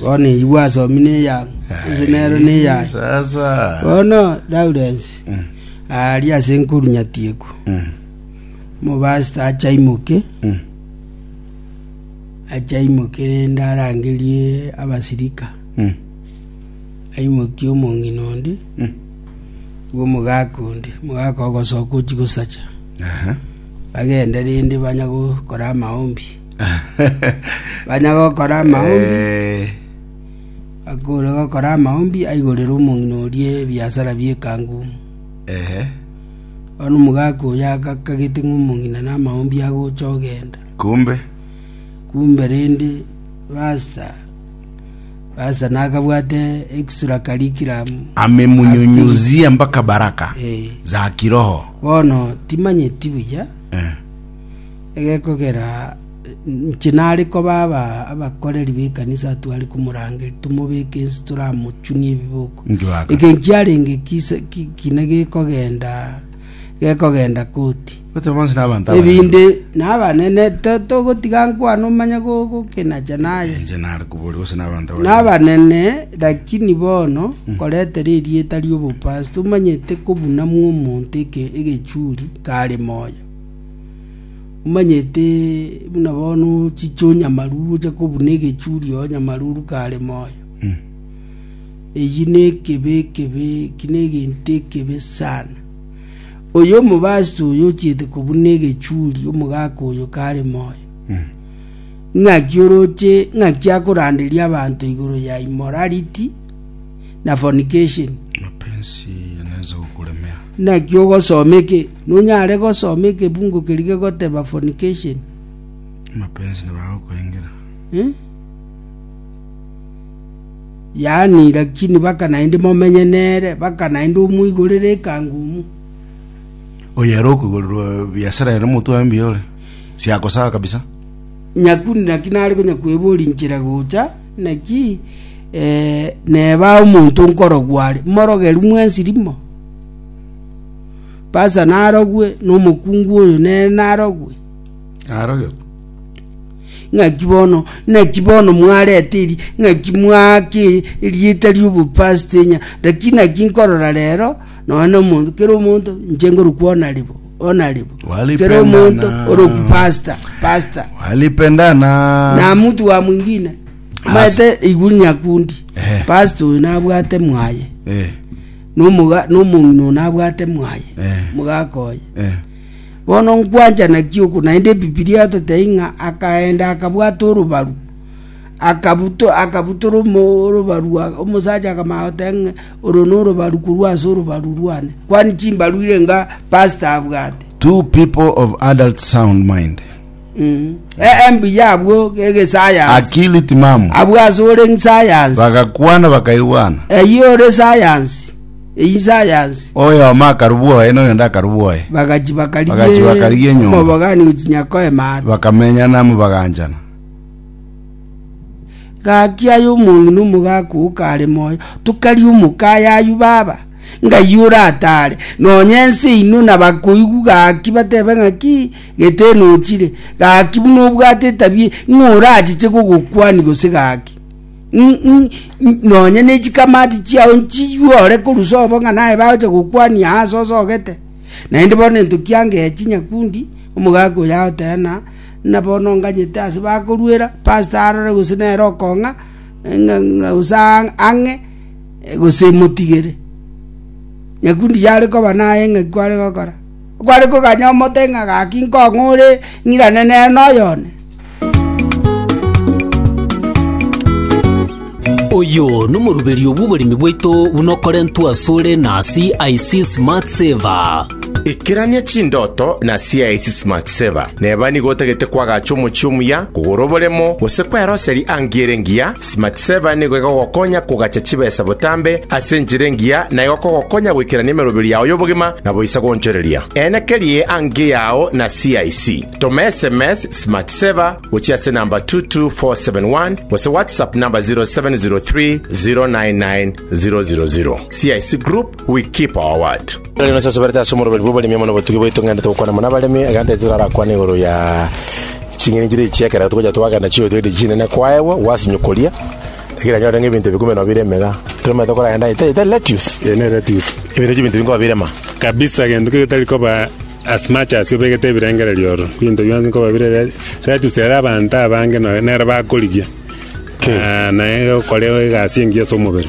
Bono igwa asomi neya, ense nero neyaye. Bono Lawrence aria ase enkoru nyatiekwa, omopastor ache aimoke, ache aimoke rende arangerie abasirika, aimokie omong'ina onde, igo omogaka onde, omogaka ogosoka ochia gosacha, bagende rende banya gokora amaombi. banya gokora amaombi Eh, akore gokora amaombi aigorere omong'ina oria ebiasara bi'ekangu ehe. bono omogaka oyo agakagete ng'a omong'ina na amaombi agocha ogenda Kumbe kumbe rende basta basta nakabwate extra curriculum amemunyunyuzia mpaka baraka eh, za kiroho bono timanyeti buya Eh, egekogera inche nare koba aba abakoreri b'ekanisa tware komorangeria, tomobeke inse toramochunie ebiboko. Njwaga. Eke nkiarenge kise- ki- kine gekogenda gekogenda koti. Gote bonsi na abanto abanene. ebinde nabanene to- togotiga nkwana omanye go- gokenacha naye Inche nare koboria gose na abanto abanene. nabanene lakini bono koretera erieta ri'obopastor omanyete kobunamwa omonto eke- egechuri kare moyo Omanyete buna bono ochiche onyamaruru oche kobuna egechuria onyamaruru kare moyo. Eyi nekebe ekebe eki negento ekebe sana. Oyo omobasi oyo ochiete kobuna egechuri omogaka oyo kare moyo. Ng'aki oroche ng'aki akoranderia abanto igoro ya immorality na fornication. mapenzi yanaweza kukulemea Naki ogosomeke Nonyare gosoma ekebugo keria gegoteba fornication. Amapenzi nigo agokoengera. Yaani, lakini baka naende momenye nere, baka naende omoigorere ekangumu. Oyare okoigorerwa biasara ere motwe aye mbuya ore. Siakosaga kabisa. Nyakuni naki nare konyakwebori nchera gocha, naki eh, neba omonto nkorogwa are. Morogeru mwensi rimo. Baasa narogwe, na omokungu oyo nere narogwe. Narogete. Ng'aki bono, naki bono mwarete eri, ng'aki mwake erieta ri'obopasitenya, naki naki nkorora rero, nonya na omonto, kera omonto, inche ngorokwa onaribo, onaribo. Walipe Kera omonto, nana. orokwa pasita, pasita. Walipendana. na mtu wa mwingine maete igwe nyakundi Eh. pastor oyo nabwate mwaye Eh. nomoga nomong'ina one abwate mwaye Eh. mogaka oye Eh. bono nkwanchana ki oku naende ebibilia yatotebia ng'a akaenda akabwata orobaru akabuto akabutora omo- orobaru a- omosacha akamanya goteba ng'a oro norobaru korwa ase orobaru rwane kwani chimbaru irenga pastor abwate Two people of adult sound mind Ee, mbuya abwo egesayansi. Akili timamu. Abwo ase ore ng'sayansi. Bagakwana bakaigwana. Eyio ore sayansi. Eyio sayansi. Oyomo akarubwa oye, na oyonde akarubwa oye. Bagachi bakarigia. Bagachi bakarigia enyomba. Omobogani gochinya koema ate. Bakamenyana amo baganchana. Gaki aye omonge na omogaka oo kare moyo, tokaria omokaye ayio baba, ng'ayio oratare, nonya ense eino nabakoigwa gaki batebe ng'aki, Gete nochire, gaki buna obwate etabia ng'a orachiche kogokwania gose gaki, nonya ne chikamati chiao nchiywe ore korusa obo ng'a naye bagocha gokwania ase osogete. Naende bono entoki yangechi nyakundi, omogaka oyo agoteba na na bono nganyete ase bakoruera, pastor arore gose nere okong'a ng'a gose ang'e gose motigere. Nyakundi yare koba naye ng'aki kware gokora. Kware koganya omote ng'a gaki nkong'u ore ng'irane nere noyo one. Oyo nomoruberio bw'oboremi bwaito buna okorentwe asore na CIC Smart Saver. Ikerania chindoto na CIC Smart Saver. Neba nigo otagete kwagacha omochie omuya, kogora oboremo, gose kweroseri angie ere engiya, Smartsaver nigo egogokonya kogacha chibesa botambe ase enchera engiya na egokogokonya goikerania emerobio yao y'obogima na boisa goonchoreria. Eena kerie angie yao na CIC. Toma sms Smartsaver gochia ase namba 22471 gose WhatsApp namba 0703 099 000. CIC Group We keep our word. Nari nasasoberete ase omoroberi bw'oboremi amo nobotugi bwaito ng'endete gokwana mono abaremi, egento yaito torarakwane igoro ya ching'eni chiria echi ekero togocha twagenda chio toire chinene kwaegwa gwasinywa koria, ekero anyore ng'a ebinto bikume nobire emega toremanyete koragenda ita ita lettuce. Eye ne lettuce. Ebinto echio ebinto binkoba birema. Kabisa gento keria getari koba as much as obegete ebirengererio oro binto bionsi nkoba bire re- lettuce ere abanto abange no- nere bakorigia Ki? Ah, naye ogokora egasi engiya ase omobere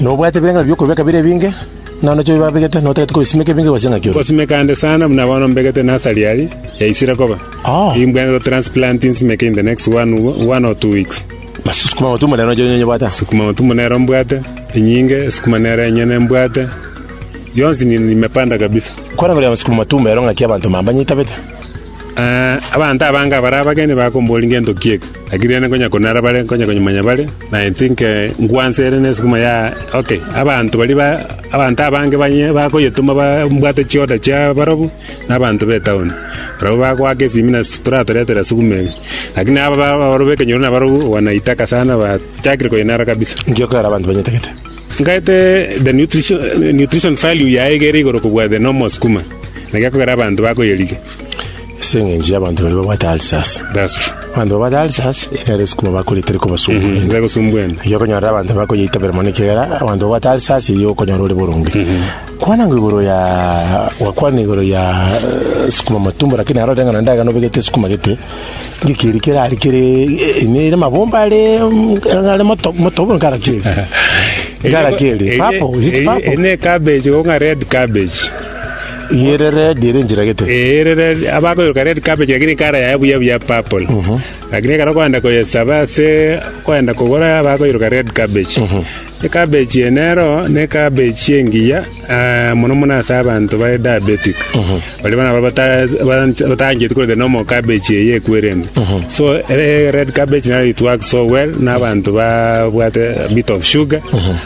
Nobwate ebireng'ana bi'okorua b'ekabira ebinge, na nacho bibabegete, na otagete kobisimeka ebinge gose ng'aki ore. Gosimeka nde sana buna bono mbegete nasari aria yaisire koba. Oh. Nigo mbwenerete gotransplant nsimeke in the next one, one or two weeks. Basi sukuma ng'otu monene nacho onye nyobwate. Sukuma ng'otu monene mbwate, enyinge, sukuma nere enyene mbwate. Yonsi ni- nimepanda kabisa. Korangeria amasukuma matumba ero ng'aki abanto mambanyeitabete. Ah, abanto abange abare abageni bakombori ngento ki eke. Lakini rende konya konara bare, konya konyimanya bare, na I think ngwansa ere nesukuma ya ok. Abanto baria ba, abanto abange banye bakoyetoma bambwate chioda chia barobu, na abanto be town. Barabwo bagoaka esimi na toratoretera sukuma eye. Lakini aba ba- aboro b'ekenyoro na barobu wanaitaka sana bachakire koyenara kabisa. Inki okoera abanto banyetagete? Ngaete the nutrition, nutrition value yaye egere igoro kobua the normal sukuma. Na gekogera abanto bakoyerigia. ase eng'encho y'abanto baria babwate ulcers That's true. abanto babwate ulcers nere esukuma bakoria teri kobasumbu Mm, ende ndagosumbuene. erio okonyora abanto bakoyeitabera mono ekegera abanto babwate ulcers erio okonyora ore boronge kwana ngo igoro ya gwakwana igoro ya eh, sukuma matumbo lakini aro reng'ana ndaga nobegete sukuma gete ngekeri kere ari kere eh, ine ere mabomba are mm, are moto- motobo nkara keri nkara keri papo is it papo Ene cabbage, onga red cabbage. Rierere riria rinchera gete. Ee, rere abakoyoka red cabbage lakini ekara yaye buya buya purple. Lakini ekero okoenda koyesaba ase okoenda kogora abakoiroka red cabbage. Ecabbage eye nero ne ecabbage engiya ah, mono mono ase abanto bare diabetic. Baria bono abwo bata- bata- batangeti korenda nomo ecabbage eye ekwerende. So ere red cabbage nero it works so well na abanto babwate a bit of sugar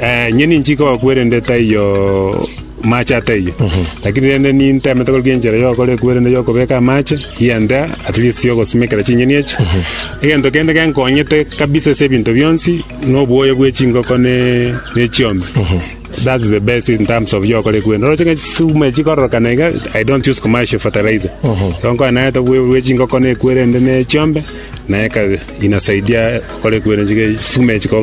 Eh, inye ninchi kogakwerende taiyo mache ataiyo lakini rende nintemete korukia enchera yokora ekwerende yokobeka amache egento at least yogosimekera chinyeni echi egento kende genkonyete kabisa ase ebinto bionsi noboyo bwe chingoko ne ne chiombe That's the best in terms of yokora ekwerende oroche ng'a chisukuma echi chikororokana iga I don't use commercial fertilizer ronkoa naete bwe bwe chingoko ne ekwerende ne chiombe naeka inasaidia gokora ekwerende chike chisukuma echi koba ne